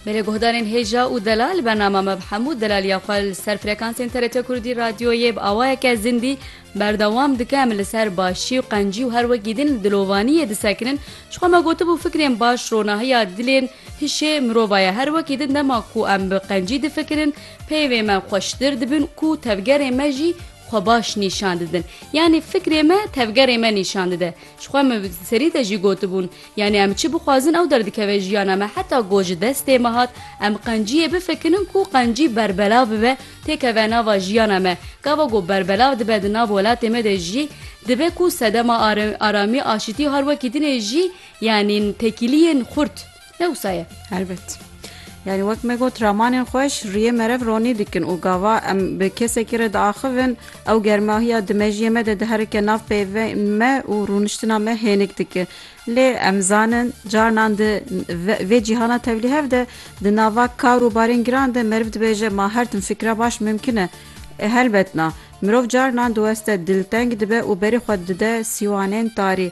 Belê guhdarên hêja û delal bernama me bi hemû delaliya xwe li ser frekansên TRT Kurdî radyoyê bi awayeke zindî berdewam dike em li ser başî û qencî û her wekî din li dilovaniyê disekinin ji xwe me gotibû fikrên baş ronahiya dilên hişê mirova ye her wekî din dema ku em bi qencî difikirin peyvê me xweştir dibin ku tevgerê me jî xwe baş nîşan didin yanî fikrê me tevgerê me nîşan dide ji xwe me serî de jî gotibûn Yanî em çi bixwazin ew derdikeve jiyana me heta ku ji destê me hat em qenciyê bifikinin ku qencî berbelav bibe têkeve nava jiyana me. Gava ku berbelav dibe di nav welatê me de jî dibe ku sedema aramî, aşitî har wekî dinê jî yanî tekîliyên xurt ne wisa ye. Helbet. Yanî wek me got ramanên xweş riyê merev ronî dikin û gava em bi kesekî re diaxivin ew germahiya di mejiyê me de diherike nav peyvên me û rûniştina me hênik dike. Lê em zanin carinan di vê cîhana tevlîhev de di nava kar û barên giran de meriv dibêje ma her tim fikra baş mimkin e. Helbet na. Mirov carinan diweste dilteng dibe û berê xwe dide sîwanên tarî.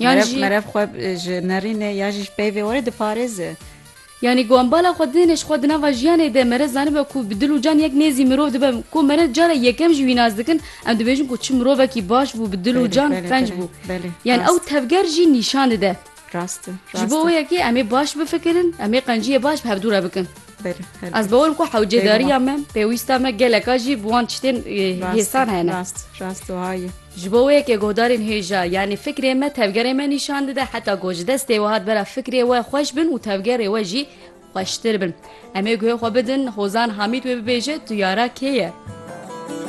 Yan jî merev xwe ji nerînê ya jî ji peyvê were diparêze. Yanî ku em bala xwe didêne ji xwe di nava jiyanê de mere zanibe ku bi dil û can yek nêzî mirov dibe ku mere cara yekem jî wî nas dikin em dibêjin ku çi mirovekî baş bû bi dil û can qenc bû yan ew tevger jî nîşan dide. Rast e. Ji bo wê yekê em ê baş bifikirin, em ê qenciyê baş bi hevdû re bikin. Ez bawer ku hewcedariya me pêwîsta me geleka jî bi wan tiştên hêsan hene ji bo wê yekê godarên hêja yanî fikrê me tevgerê me nîşan dide heta ku ji destê we hat bera fikrê we xweş bin û tevgerê we jî xweştir bin. Em ê guhê xwe bidin hozan hamîd wê bibêje tu yara kê ye.